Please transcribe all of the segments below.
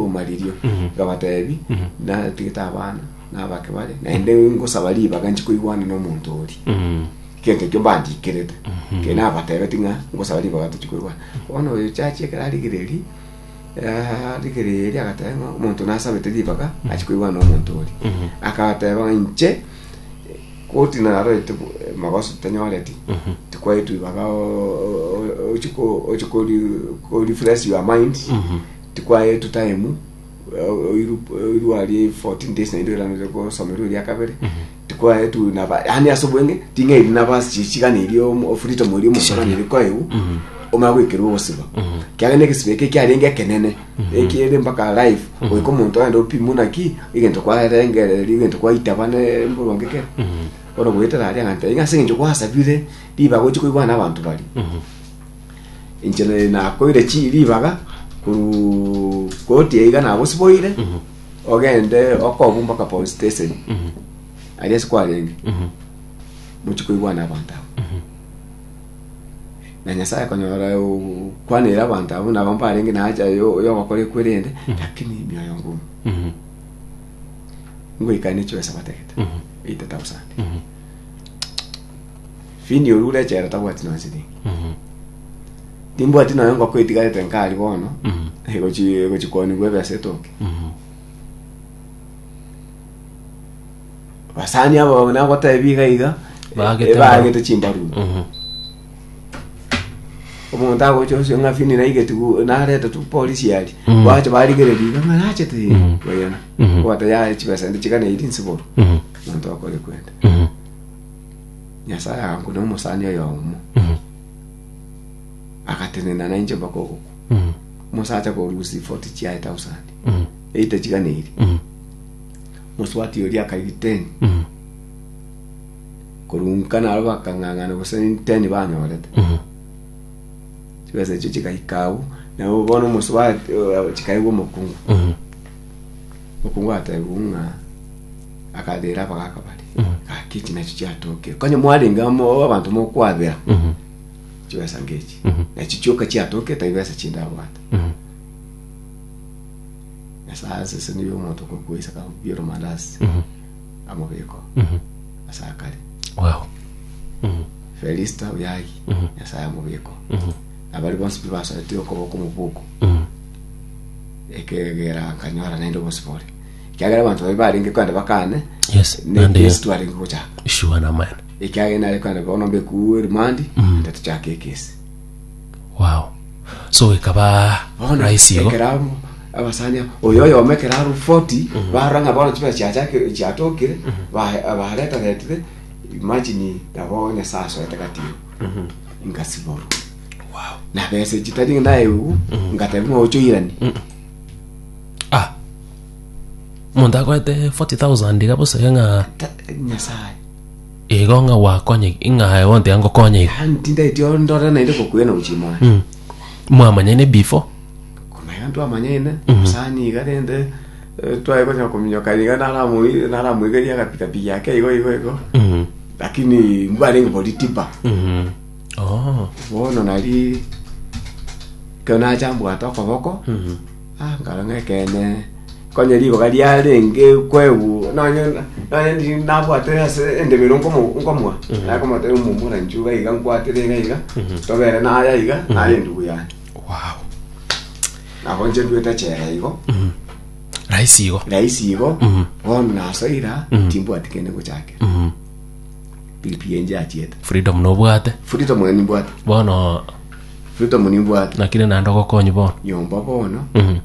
omaririo, ngabateebia, Natigete abana, na abake bare, naende ngosaba ribaga nchi koigwana nomonto oria. Egento ekio mbandikerete, ekio nabateebeti ng'a ngosaba ribaga tochi koigwana. Bono oyo chiachia ekero arigereiri, arigereiri agateeba ng'a omonto nasabete ribaga achi koigwana nomonto oria. Akateeba ng'a inche, koti narorete bo- magoso tanyoreti, tikwaetu ribaga o- o- o- ochi ko- ochi kori- korefresh your mind, Tikwaetwe time oiru oiru arie 14 days naende oiraneire gosomerwa eria kabere tikwaetwe naba yani ase obwenge ting'airi nabasi chichigana eri omo freedom eri omosabani eri koeu omanye goikerwa ogosiba kiagera egesiba eke kiarenge ekenene ekiere mpaka live goika omonto aende opimwe naki egento kwarengereria egento kwaitaba ne emboronge ekere bono goetera aria ng'a ntebi ng'a ase eng'encho gwasabire ribaga ochi koigwana abanto baria Inche nere nakoire chi ribaga koru koti eiga nagosiboire ogende okobu mpaka police station aria ase kwarenge mochi koigwana abanto abo na nyasaye konyora kwanere abanto abo nabo mbarenge nacha yo yogokora ekwerende lakini mioyo ngomu ngoikane chwesa batagete 8000 Fini oria ore echela tabwati nonye silingi timbwati nonye ngoko etigarete nkari bono egochi egochi kwanigwa ebesa etoke basani abo nagotebi iga iga Baagete eh, baagete chimbaruni omonto agocha osio ng'a fini naigeti narete tu polisi yari Mhm. bache barigereria iga ng'a nachete Mhm. oyena Mhm. kwata ya chibesa ndi chigana iri nsiboro monto akore kwenda Nyasae aganku na omosani oyomo agatenena nainche mpaka ogokwa Mm. omosacha korusi 40 chiaye thousand Mm. eite chiganeri Mm. moswati oria akaigi 10 Mm. korunka naro bakang'ang'ana gose 10 banyorete Mm. chibesa echio chigaika agwo nabo bono omoswati eh, chikaigwa omokungu Mm. Okwo ngwatebiwu ng'a akabera abagaka bare gaki chinachi chiatokire konya mwarenge amo abanto mokwabera chibesa ngechi nachi chioka chiatokire tari besa chindabwate esase ase niyo omonto okokwesa kakobia oromandasi amobeko ase akare wow felista oyagi nyasaye amobeko abari bonsi pi basoetire okoboko mobuku Ekeegera nkanyora naende obosibore, ekiagera abanto baye barenge kogenda bakane Yes, ne naende yo. Kristo arenge gochaka. Sure na man. Ekiagera nare kogenda bono mbekuu erimandi, naende tochake ekesi. Wow. So ekaba Bono rahisi igo. ekero abo abasani abo, oyo oyomo ekero aro 40 barora ng'a bono chibesa chiachakire chiatokire ba- baretaretire imagine nabo Nyasae asoete gati igo nkasiborwa na besa chitari naye ugu ngatebi ng'a ocho irani ah omonto akorete 40000 iga bosage ng'a Ta- nyasaye igo ng'a gwakonye ng'a onte angokonye iga yani tindeti ondore naende kokwena uchimona Mm. mwamanyane before komanya twamanyene sani iga rende eh, twaye gocha kominyoka iga naramoi- naramoigeria agapikapiki ake igo igo igo Mm. lakini mbwarenge bori tipa Mhm. Oh. bono nari ekero nacha mbwate okoboko Mhm. ah, nkara ng'a ekene konye rigoba riarenge kwebu nonye nonye ndi- nabwatire ase endebero nkomo- nkomwa nakomotebia omomura nchuga iga nkwatire iga iga tobere naya iga nare endugu yane Wow. nabo inche ndwete echela igo Rahisi igo. rahisi igo bono nasoira timbwati kende ngochakera Mhm. Pilipili enche achiete. Freedom nobwate. Freedom na nimbwate. Bono. Freedom nimbwate. Nakire nando gokonyi bono. Nyomba bono. Mhm.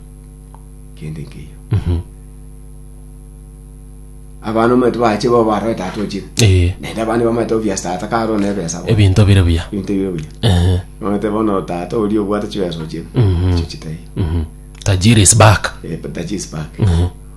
Kende nkeyo. Mhm. Abana mwetu bache bo baro etatu ochire. Eh. Nende abana bamwe to bia start karo ne besa. Ebinto bire bia. Ebinto bire bia. Eh. Mwetu bono tata ori obwate chibesa ochire. Mhm. Chichitai. Mhm. Tajiri is back. Eh, tajiri is back. Mhm.